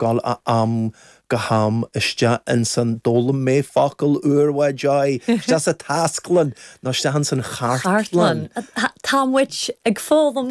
dul ó am go ham isteach ins an, d'fhoghlaim mé focal úr, bhuel, joy, isteach sa taisclann, nó isteach ins an chartlann. Chartlann. Tá muid ag foghlaim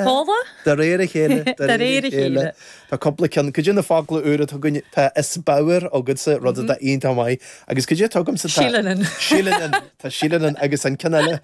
focla. De réir a chéile, de réir a chéile. Tá cúpla ceann, cuid de na focla úra atá againn, tá is bodhar agatsa, rud atá iontach maith, agus cuid eile atá agamsa tá. Síleann. Síleann, tá síleann, agus an ceann eile.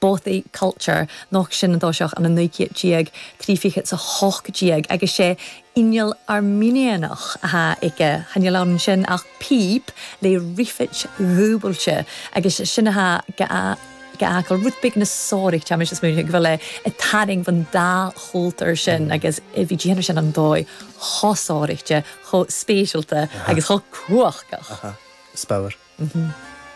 bothy culture, noch sin an toiseach an 19 céad, trí fichit 's a hocht déag, agus sé inneall Airminianach athá aige, cha níl ann ansin ach píp lé riuffit dhúbailte, agus sin athá 'ge a ge a fhacal. Rud big na sárach, táimís a' smaoineamh go bhfuil é a' tarraing von dá chultur sin, agus bhí déanamh ansin an dóigh cho sáraichte, cho spéisialta, agus cho cumhachtach. Aha. Is beadh air.